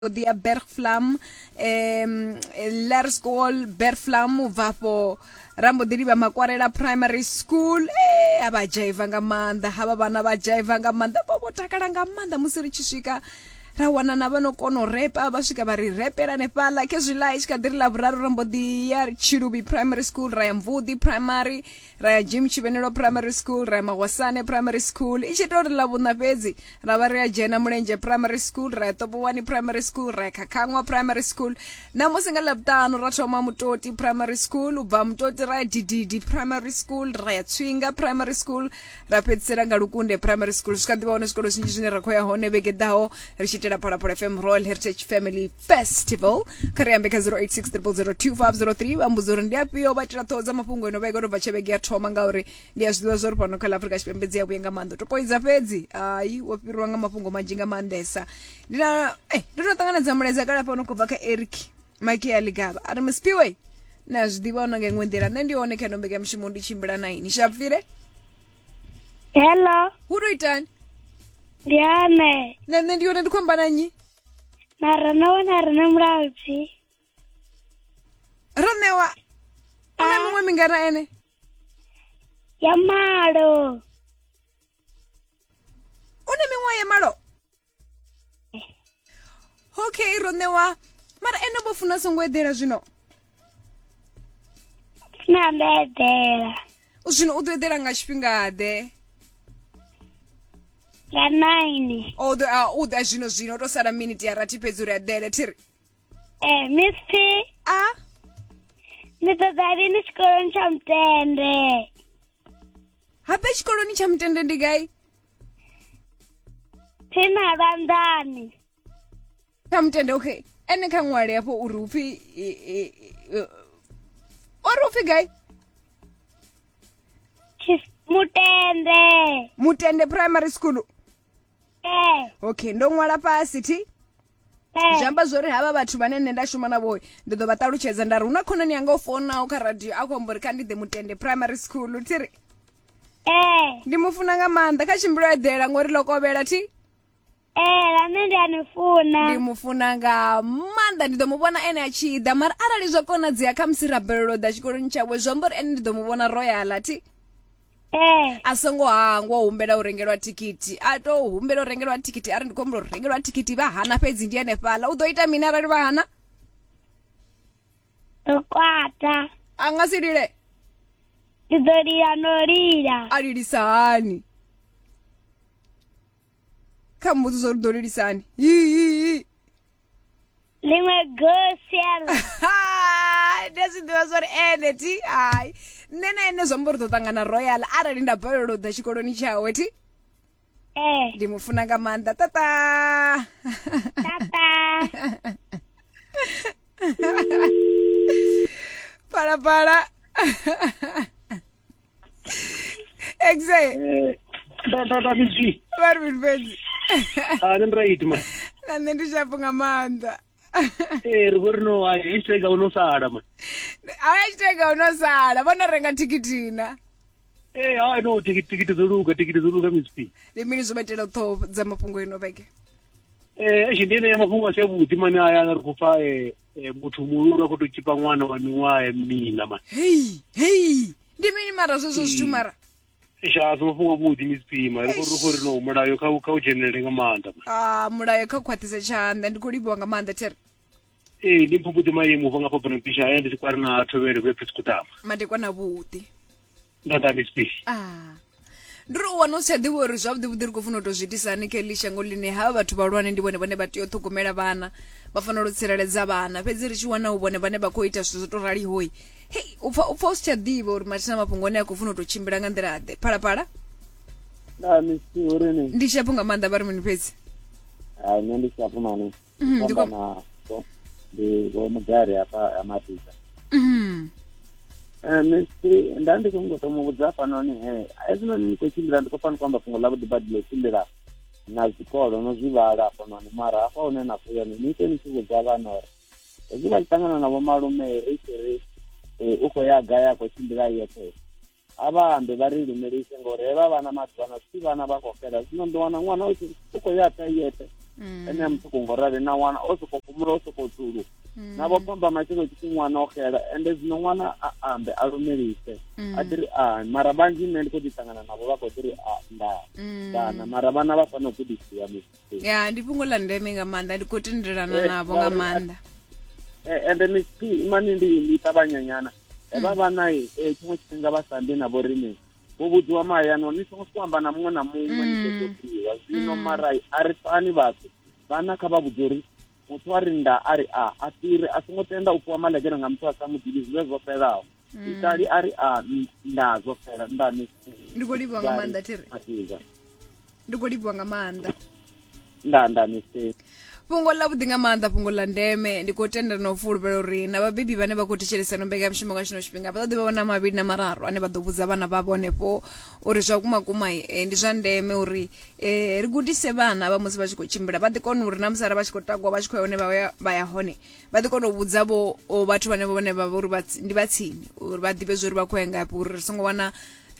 Dia Bergflam eh, Lar School Bergflam u bva afho ra mbo ḓi livha makwarela primary school eh, a vha dzhaiva nga maanḓa havha vhana vha dzhaiva nga maanḓa vho vho takala nga maanḓa musi ri tshi swika ra wana na vhano kono repa vha swika vha ri repela nefhaḽa khezwi ḽa i tshi kha ḓi ri ḽa vhuraru ra mbo ḓi ya tshiluvhi primary school ra ya mvudi primary ra ya jim tshivhenelo primary school ra ya magwasane primary school i tshi ita uri ḽa vhuṋa fhedzi ra vha ri a dzhena mulenzhe primary school ra ya ṱopowani primary school ra ya khakhaṅwa primary school namusi nga ḽavhuṱanu ra thoma mutoti primary school u bva mutoti ra ya dididi primary school ra ya tswinga primary school ra fhedzisela nga lukunde primary school zwi kha ḓivha hone zwikolo zwinzhi zwine ra khou ya hone vhege ḓaho ri tshi itela phalaphala fm royal heritage family festival kha ri ambe kha 0860002503 vha mbudzo uri ndi afhio vha tira ṱhoho dza mafhungo ino vhege nobva tshe vhege ya thoma ngauri ndi a zwiḓivha zwa uri fhano kha la afurika tshipembe dzi a vhuye nga maanḓa topoidza fhedzi hayi wo fhiriwa nga mafhungo manzhi nga maanḓesa ndi na eh, ndo no ṱanganedza mulaedza kale fhano khou bva kha eric mike ya ligaba a ri mspiwe na zwiḓivha ona nga iṅwe nḓila nṋe ndi hone kha ino mbeke ya mushumo ndi tshimbila na ini shapfire Hello, hu to itani ndi Ane. na nṋe ndi hone ndi khou amba na nnyi na ro no wana ri na mulaudzi ro ṋewa u na miṅwe mingana ene ya malo u na miṅwaha ya malo okay ro ṋewa mara ene vho funa songo eḓela zwino na ndo eḓela u zwino u ḓo eḓela nga tshifhingaḓe nga nine o ḓo a u ḓa zwino zwino u to sala miniti ya rathi fhedzi uri eḓele thiri eh miss p a ndi ṱoḓa lini tshikoloni tsha mutende habe tshikoloni tsha mutende ndi gai phina lwanḓani kha mutende okay ene kha ṅwale hafho uri upfi ori upfi gai mutende mutende primary school eh. okay ndo ṅwala fhasi thi eh. zwi amba zwori havha vhathu vhane nṋe nda shuma navho ndi ḓo vha ṱalutshedza nda ri hu na khonani yanga o fonaho kha radio a khou amba uri kha ndi ḓe mutende primary school thi ri eh. ndi mu funa nga maanḓa kha tshimbilo eḓela ngori ḽo kovhela thi ee na nṋe ndi a ni funa ndi mu funa nga maanḓa ndi ḓo mu vhona ene a tshi ḓa mara arali zwa konadzea kha musi ra bvelela u ḓa tshikoloni tshawe zwi amba uri ene ndi ḓo mu vhona ro ya ḽa thi ee a songo hangwa u humbela u rengelwa thikhithi a to humbela u rengelwa thikhithi a ri ndi khou humbela u rengelwa thikhithi vha hana fhedzi ndi henefhaḽa u ḓo ita mini arali vha hana ndo kwata a nga si lile ndi ḓo lila no lila a lilisa hani kha mbudziso uri ḓo lilisani ḽiṅwe gosiel ndi a zwi ḓivha zwa uri ene ti hai nṋe na ene zwiamba uri ḓo ṱangana royal arali nda balelwa u ḓa tshikoloni tshawe ti ee ndi mu funa nga maanḓa tata tata phalaphala Exactly. Eh, tata tati zvi Vari kuti fedzi. ani muraiti ma Na nṋe ndi shapu nga maanḓa. Eh, ri vhori no hai hashtag uno sala ma Haya chitega unosala. Vona renga tikiti na. Eh, hai no tikiti tikiti dzo luga tikiti dzo luga mcp Ndi mini zwo vhaitela u ṱhoho dza mafhungo ino vhege? Eh, eish ndi ene ya mafhungo a si avhuḓi mani aya ri khou pfa eh, e, muthu muhulu a khou tou tshipa ṅwana wa miṅwaha ya mina mani hei hei ndi mini mara zwezwo zwithu hmm. mara sha a si mafhungo avhuḓi misipima ri khou khou ri no mulayo kha kha u dzhenelele nga maanḓa a ah, mulayo kha khwaṱhise tshanḓa ndi khou livhiwa nga maanḓa there ee ndi mphupuḓi maimo ubva nga fhabana pisha aya ndi si kwari na thovhele vhe phesikutama madekwana vhuḓi ndo ḓa bisbi ah ndi ri u wana u si tsha ḓivha uri zwavhuḓi vhuḓi ri khou funa u tou zwi itisa hani kha eḽi shango ḽine ha vhathu vhahulwane ndi vhone vhane vha tea u ṱhogomela vhana vha fanela u tsireledza vhana fhedzi ri tshi wana u vhone vhane vha khou ita zwithu zwo tou ralihoi hei u pfa u pfa u si tsha ḓivha uri mathina mafhungo ane a khou funa u tou tshimbila nga nḓila ḓe phalaphala na misi uri ni ndi shapo nga maanḓa vha ri mini fhedzi ha nṋe ndi shapo mani Mhm, ndiko- fhambana vho- ndi vho mudali hafha ha matiza Mhm. Eh, mistri nda ndi khou ngoto mu vhudza hafhanoni he hezwinoni ni khou tshimbila ndi khou fana khou amba fhungo ḽa vhuḓi badi ḽo tshimbila na zwikolo no zwi vhala hafhanoni mara hafha hune na khou yone ni ite ni tshi vhudza vhana uri hezwi vha tshi ṱangana na vhomalume ri tshi ri eh, u khou ya gai a khou tshimbila yeṱhe a vha ambe vha ri lumelise ngori he vha vhana maḓuvhano si vhana vha khou fhela zwino ndi wana ṅwana u khou ya ta yeṱhe mm. ene a muṱuku ngo rali na wana o sokou fhumula o sokou dzulu mm. na vho pamba matshelo tshipfi ṅwana o xela ende zwino ṅwana a ambe a lumelise mm. a ḓiri a mara vhanzhi nṋe ndi khou ḓi ṱangana navho vha khou ḓiri a nda kana mara vhana vha fanela u gudisiwa misi ya ndi fhungo ḽa ndeme nga maanḓa ndi khou tendelana eh, navho nga maanḓa eh, ende misi mani ndi ndi ṱavhanyanyana Evha hmm. vhana e eh, tshiṅwe tshifhinga vha sa ambi na vho riṋe vho vhudziwa mahayani uri ni songo sokou amba na muṅwe na muṅwe ni ṱoḓo hmm. ḓiwa zwino hmm. mara a ri fani vhathu vhana kha vha vhudze uri muthu a ri nda a ri a a fhiri a songo tenda u fhiwa malegere nga muthu a sa mu ḓivhi zwivhe zwo fhelaho itali a ri a nda zwo fhela nda ni ndi khou livhuwa nga maanḓa thiri ndi khou livhuwa nga maanḓa nda nda mistake fhungo ḽa vhuḓi nga maanḓa fhungo ḽa ndeme ndi khou tendela na u fulufhela uri na vhabebi vhane vha khou thetshelesano mbekanyamushumo nga tshino tshifhinga vha ṱoḓi vha vhona mavhili na mararu ane vha ḓo vhudza vhana vhavho henefho uri zwa kumakuma eh, ndi zwa ndeme uri eh, ri gudise vhana vha musi vha tshi khou tshimbila vha ḓi kona uri na musi ara vha tshi khou takuwa vha tshi khou ya hone vha ya hone vha ḓi kona u vhudza vho vhathu vhane vhone vha vha uri ndi vha tsini uri vha ḓivhe zwa uri vha khou ya ngafhi uri ri songo wana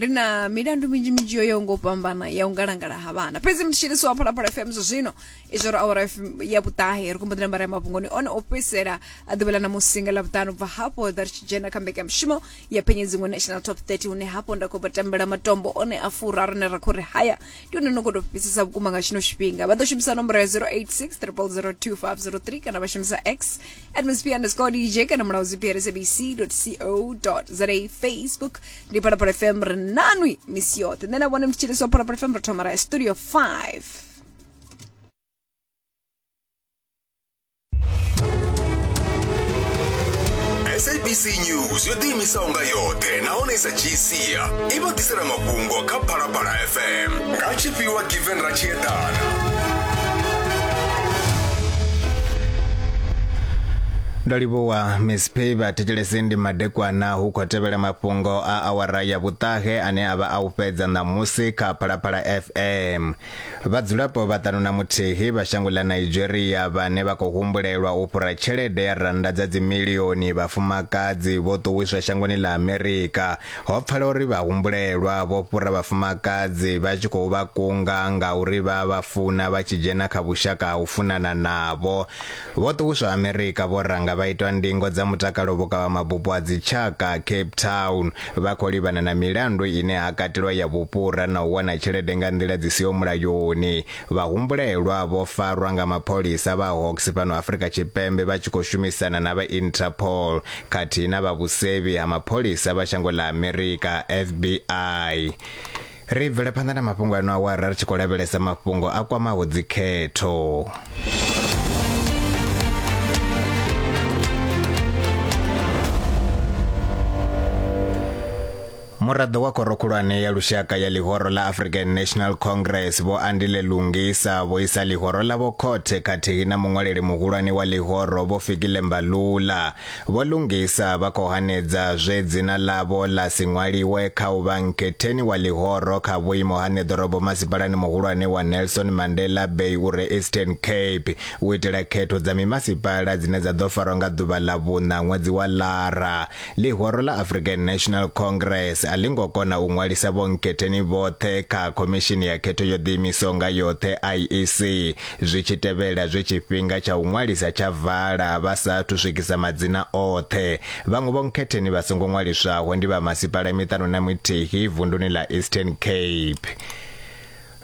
ri na milandu minzhi minzhi yo yaho ngo fhambana ya u ngalangala ha vhana fhedzi mutshilisi wa phalaphala fm zwa zwino izwo ri awara ya vhuṱahe ri khou mboḓela mbara ya mafhungoni one o fhedzisela a ḓuvha ḽa na musinga ḽa vhuṱanu ubva hafho ḓa ri tshi dzhena kha mbekanyamushumo ya phenyedziṅwe national top 30 hune hafho nda khou vha tambela matombo one a fura rine ra khou ri haya ndi hone no khou tou fhisisa vhukuma nga tshino tshifhinga vha ḓo shumisa nomboro ya 0863002503 kana vha shumisa x atmosphere underscore dj kana mulaho zipr sabc co za facebook ndi phalaphala fm ri nanwi misi yoṱhe nṋe na vhone mthitshiliswa phalaphala fm ri thoma ra ya studio 5 sabc news yo ḓiimisaho nga yoṱhe nahone i sa dzhii sia i vha ḓisela mafhungo kha phalaphala fm nga tshifhiwa given ra tshi eḓana ndo livhuwa miss p vhathetshelesi ndi madekwana hu khou tevhela mafhungo a awara ya vhuṱahe ane a vha a u fhedza ṋamusi kha phalaphala fm Vhadzulapo vhaṱanu na muthihi vha shango ḽa Nigeria vhane vha khou humbulelwa u fhura tshelede ya rannda dza dzimilioni vhafumakadzi vho ṱuwiswa shangoni ḽa Amerika. Ho pfala uri vhahumbulelwa vho fhura vhafumakadzi vha tshi khou vha kunga nga uri vha vha funa vha tshi dzhena kha vhushaka ha u funana navho. Vho Ṱuwiswa Amerika vho ranga vha itwa ndingo dza mutakalo vhukavhamabupo ha dzitshaka Cape Town vha khou livhana na milandu ine ha katelwa ya vhufhura na u wana tshelede nga nḓila dzi siho mulayoni. Vhahumbulelwa vho farwa nga mapholisa vha Hawks fhano Afrika Tshipembe vha tshi khou shumisana na vha Interpol khathihi na vha vhusevhi ha mapholisa vha shango ḽa Amerika, FBI. Ri bvele phanḓa na mafhungo ano awara ri tshi khou lavhelesa mafhungo a kwamaho dzikhetho. muraḓo wa khoro khulwane ya lushaka ya ḽihoro ḽa african national congress vho andile lungisa vho isa ḽihoro ḽavho khothe khathihi na muṅwaleli muhulwane wa ḽihoro vho fikile mbalula Vho Lungisa vha khou hanedza zwe dzina ḽavho ḽa si ṅwaliwe kha u vha nkhetheni wa ḽihoro kha vhuimo ha ṋeḓorobo masipalani muhulwane wa Nelson Mandela Bay u re Eastern Cape u itela khetho dza mimasipala dzine dza ḓo farwa nga ḓuvha ḽa vhuṋa ṅwedzi wa Lara. Ḽihoro ḽa African National Congress a ḽi ngo kona u ṅwalisa vhonkhetheni vhoṱhe kha Khomishini ya Khetho yo Ḓiimisaho nga Yoṱhe, IEC, Zwi tshi tevhela zwe tshifhinga tsha u ṅwalisa tsha vala vha sa athu swikisa madzina oṱhe, vhaṅwe vhonkhetheni vha songo ṅwaliswaho ndi vha masipala miṱanu na mithihi vunduni ḽa Eastern Cape.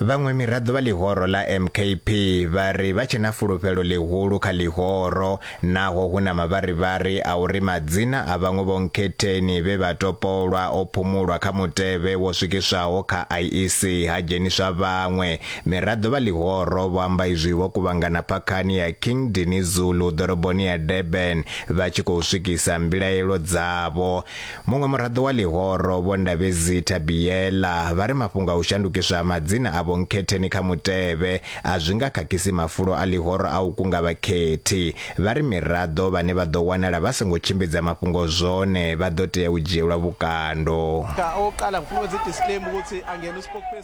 Vhaṅwe miraḓo vha ḽihoro ḽa MKP vha ri vha tshe na fulufhelo ḽihulu kha ḽihoro Naho hu na mavharivhari a uri madzina a vhaṅwe vhonkhetheni vhe vha topolwa o phumulwa kha mutevhe wo swikiswaho kha IEC ha dzheniswa vhaṅwe, miraḓo vha ḽihoro vho amba izwi vho kuvhangana phakhani ya King Dinizulu ḓoroboni ya Durban vha tshi khou swikisa mbilaelo dzavho. Muṅwe muraḓo wa ḽihoro, Vho Ndabezi Thabiela, vha ri mafhungo a u shandukiswa ha madzina a vhonkhetheni kha mutevhe a zwi nga khakhisi mafulo a ḽihoro a u kunga vhakhethi. Vha ri miraḓo vhane vha ḓo wanala vha songo tshimbidza mafhungo zwone vha ḓo tea u dzhielwa vhukando.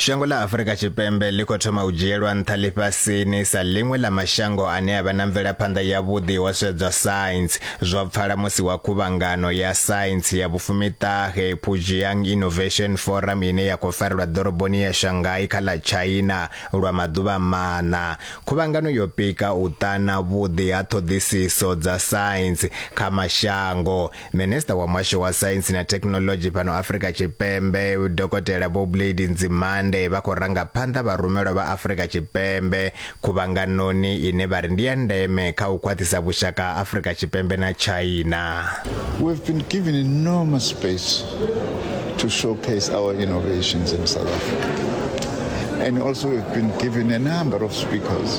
Shango ḽa Afurika Tshipembe ḽi khou thoma u dzhielwa nṱha ḽifhasini sa ḽiṅwe ḽa mashango ane a vha na mvelaphanḓa yavhuḓi ho sedzwa saintsi, zwo pfala musi wa khuvhangano ya saintsi ya vhufumiṱahe Pujiang Innovation Forum ine ya khou farelwa ḓoroboni ya Shanghai kha ḽa China lwa maḓuvha maṋa. Khuvhangano yo pika u ṱana vhuḓi ha ṱhoḓisiso dza saintsi kha mashango Minista wa muhasho wa saintsi na thekhinoḽodzhi fhano Afrika Tshipembe dokotela Vho Blade Nzimande vha khou ranga phanḓa vharumelwa vha Afrika Tshipembe khuvhanganoni ine vha ri ndi ya ndeme kha u khwaṱhisa vhushaka ha Afrika Tshipembe na China. We've been given enormous space to showcase our innovations in South Africa and also we've been given a number of speakers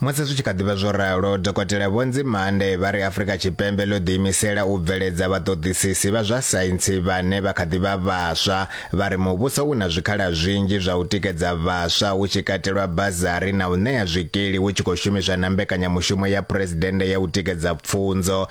Musi zwi tshi kha ḓi vha zwo ralo, Dokotela Vho Nzimande vha ri Afrika Tshipembe ḽo ḓiimisela u bveledza vhaṱoḓisisi vha zwa saintsi vhane vha kha ḓi vha vhaswa. Vha ri muvhuso u na zwikhala zwinzhi zwa u tikedza vhaswa hu tshi katelwa bazari na u ṋea zwikili hu tshi khou shumiswa na mbekanyamushumo ya Phresidennde ya u tikedza pfunzo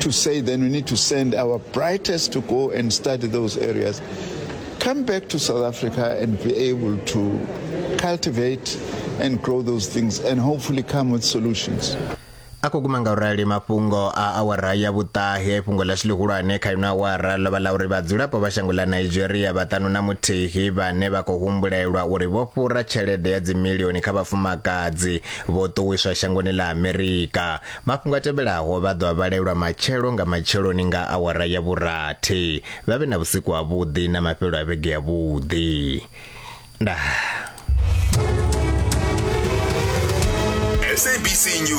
to say then we need to send our brightest to go and study those areas, come back to South Africa and be able to cultivate and grow those things and hopefully come with solutions. a khou guma nga u rali mafhungo a awara ya vhuṱahe fhungo ḽashu ḽihulwane kha ino awara ḽo vha ḽa uri vhadzulapo vha shango ḽa nigeria vhaṱanu na muthihi vhane vha khou humbulelwa uri vho fhura tshelede ya dzimilioni kha vhafumakadzi vho ṱuwiswa shangoni ḽa amerika Mafhungo a tevhelaho vha ḓo a vhalelwa matshelo nga matsheloni nga awara ya vhurathi. Vha vhe na vhusiku ha vhuḓi na mafhelo a vhege ya vhuḓi. Ndaa. SABC News.